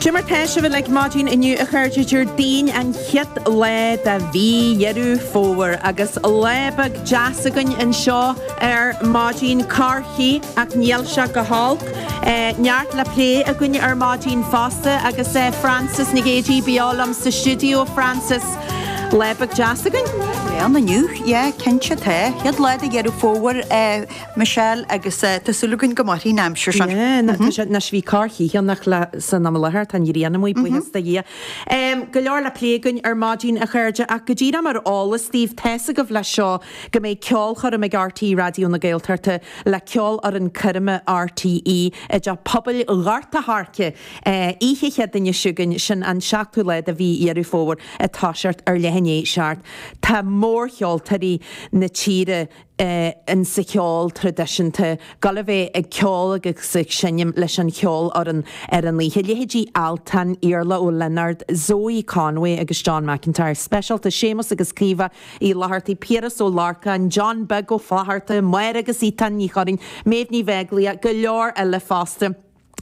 Dé mar tá sibh uilig maidin inniu a chairde, Déardaoin an chéad lá de mhí Dheireadh Fómhair agus lá beag deas againn anseo ar maidin, corrchith ach níl sé go holc. Neart le plé againn ar maidin fosta agus Frances Nic Géadaigh beo liom sa stiúideo. Frances, lá beag deas againn. Lá álainn inniu, yeah, cinnte, tá. Chéad lá de Dheireadh Fómhair. Michelle, Agus tá súil againn go mairfidh an aimsir sin. Yeah, anois bhí corrchith ann ach san am i láthair, tá an ghrian amuigh, buíochas do Dhia. Go leor le plé againn ar maidin, a chairde, ach go díreach mar eolas daoibh, tá's agaibh leis seo go mbeidh ceolchoirm ag RTÉ Raidió na Gaeltachta le Ceolfhoireann Coirme RTÉ i dTeach Pobail Ghort a' Choirce oíche Chéadaoine seo chugainn, sin an 7ú lá de mhí Dheireadh Fómhair ag toiseacht ar leath i ndiaidh a seacht. Tá mórcheoltóirí na tíre. insa cheol traidisiúnta ag gabháil a bheith ag ceol agus ag seinm leis an cheolfhoireann ar an oíche. Leithéidí Altan, Iarla Ó Lionáird, Zoe Conway agus John McIntyre, speisialta, Séamus agus Caoimhe Uí Fhlatharta, Piaras Ó Lorcáin, John Beag Ó Flatharta, Máire agus Étáin Ní Churraoin, Méabh Ní Bheaglaoich, go leor eile fosta.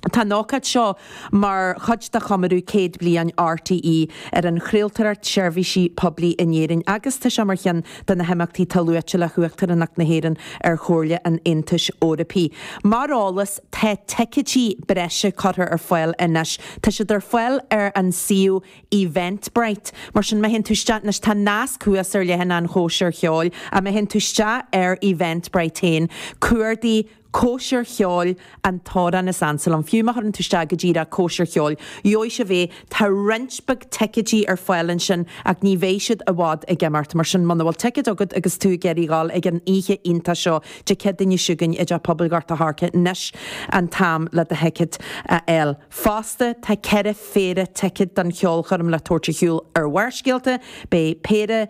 Tá an ócáid seo mar chuid de chomóradh céad bliain RTÉ ar an chraoltóireacht seirbhíse poiblí in Éirinn agus tá sé mar cheann de na himeachtaí atá luaite le hUachtaránacht na hÉireann ar Chomhairle an Aontais Eorpaigh. Mar eolas, tá ticeidí breise curtha ar fáil anois. Tá siad ar fáil ar an suíomh Eventbrite. Mar sin, má théann tú isteach anois, tá nasc thuas ar leathanach chóisir cheoil, ach má théann tú isteach ar Eventbrite féin, cuardaigh cóisir cheoil an tAmhrán is ansa liom. Fiú má chuireann tú isteach go díreach cóisir cheoil, gheobhaidh sibh é, tá roinnt beag ticeidí ar fáil ansin ach ní bheidh siad i bhfad ag imeacht. Mar sin, muna bhfuil ticead agat agus tú ag iarraidh dhul ag an oíche iontach seo Dé Céadaoine seo chugainn i dTeach Pobail Ghort a' Choirce, anois an t-am le do thicéad a fháil. Fosta, tá ceithre phéire ticead don cheolchoirm le tabhairt ar shiúl ar Bharrscéalta, beidh péire.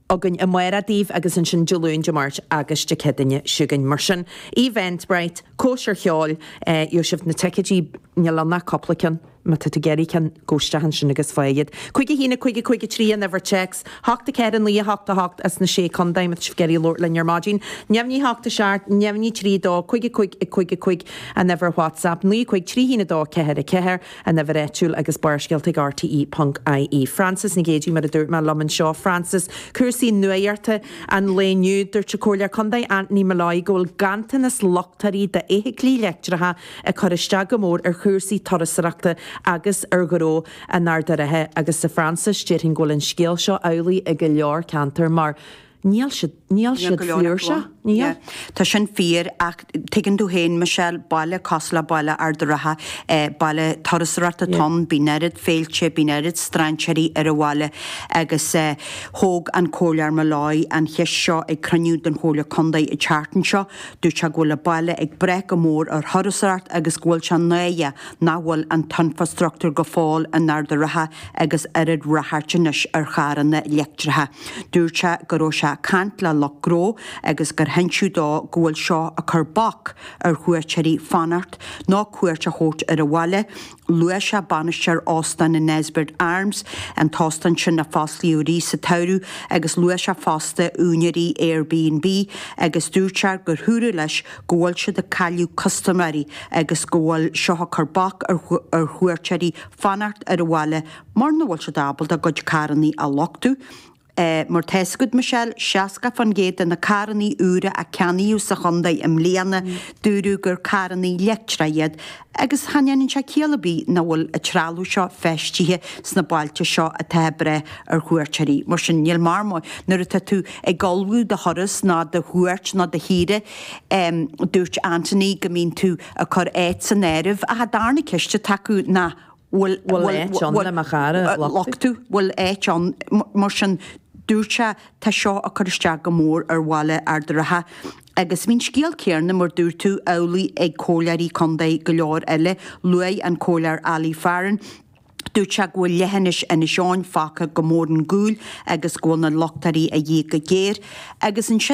againn amárach daoibh agus ansin Dé Luain, Dé Máirt agus Dé Céadaoine seo chugainn. Mar sin, Eventbrite, cóisir cheoil, gheobhaidh sibh na ticeidí, níl ann ach cúpla ceann, má tá tú ag iarraidh ceann, gabh isteach ansin agus faigh iad. Cúig a haon, a cúig a cúig a trí an uimhir téacs, hocht a ceathair a naoi a hocht a hocht as na sé contae má tá sibh ag iarraidh labhairt linn ar maidin. Neamhní hocht a seacht, neamhní trí a dó, cúig a cúig a cúig a cúig an uimhir WhatsApp, naoi a cúig trí haon a dó ceathair a ceathair. An uimhir áitiúil agus Barrscéalta ag RTÉ.ie. Frances Nic Géadaigh Mar a dúirt mé liom anseo, Frances, cúrsaí nuaíochta an lae inniu, dúirt an Comhairleoir Contae Anthony Molloy go bhfuil ganntanas luchtáirí d'fheithiclí leictreacha ag cur isteach go mór ar chúrsaí turasóireachta agus ar ghnó in Ard an Rátha agus a Frances, déarfainn go bhfuil an scéal seo amhlaidh i go leor ceantar mar. Níl siad, níl siad fliúrse, níl. Tá sin fíor, ach tuigeann tú féin, Michelle, baile cosúil le baile Ard a' Rátha, baile turasóireachta atá ann, bíonn oiread féilte, bíonn oiread strainséirí ar an bhaile agus thóg an Comhairleoir Molloy an cheist seo ag cruinniú den Chomhairle Contae an tseachtain seo, dúirt sé go bhfuil an baile ag brath go mór ar thurasóireacht agus go bhfuil sé náireach nach bhfuil an t-infreastruchtúr go fóill in Ard a' Rátha agus oiread ráchairt anois ar charranna leictreacha. Dúirt sé go raibh sé ag caint le lucht gnó agus gur hinsíodh dó go bhfuil seo ag cur bac ar chuairteoirí fanacht nó cuairt a thabhairt ar an bhaile. Luaigh sé bainisteoir Óstán an Nesbitt Arms, an t-óstán sin a foscladh arís sa tsamhradh, agus luaigh sé fosta úinéirí Airbnb agus dúirt sé gur dúradh leis go bhfuil siad ag cailleadh custaiméirí agus go bhfuil seo ag cur bac ar chuairteoirí fanacht ar an bhaile Mura bhfuil siad ábalta a gcuid carrannaí a luchtú, mar tá a fhios agat, Michelle, 60% de na carrannaí úra a ceannaíodh sa chontae i mbliana, dúradh gur carrannaí leictreacha iad, agus cha ndéanann sé ciall ar bith nach bhfuil an trealamh seo feistithe sna bailte seo atá ag brath ar chuairteoirí. Mar sin, níl, mar, má nuair atá tú ag ullmhú do thuras ná do chuairt ná do shaoire, dúirt Anthony go mbíonn tú ag cur áiteacha san áireamh, cha dtarna cionn is de nach bhfuil áit ann le mo charr a luchtú. bhfuil áit ann. Mar sin, dúirt sé, Tá seo ag cur isteach go mór ar bhaile Ard a' Rátha. Agus bhí an scéal céanna, mar dúirt tú, amhlaidh ag comhairleoirí contae go leor eile. Luaigh an Comhairleoir Ali Farren, dúirt sé go bhfuil leithinis Inis Eoghain fágtha go mór ar gcúl agus go bhfuil na luchtairí a dhíth go géar. Agus ansin.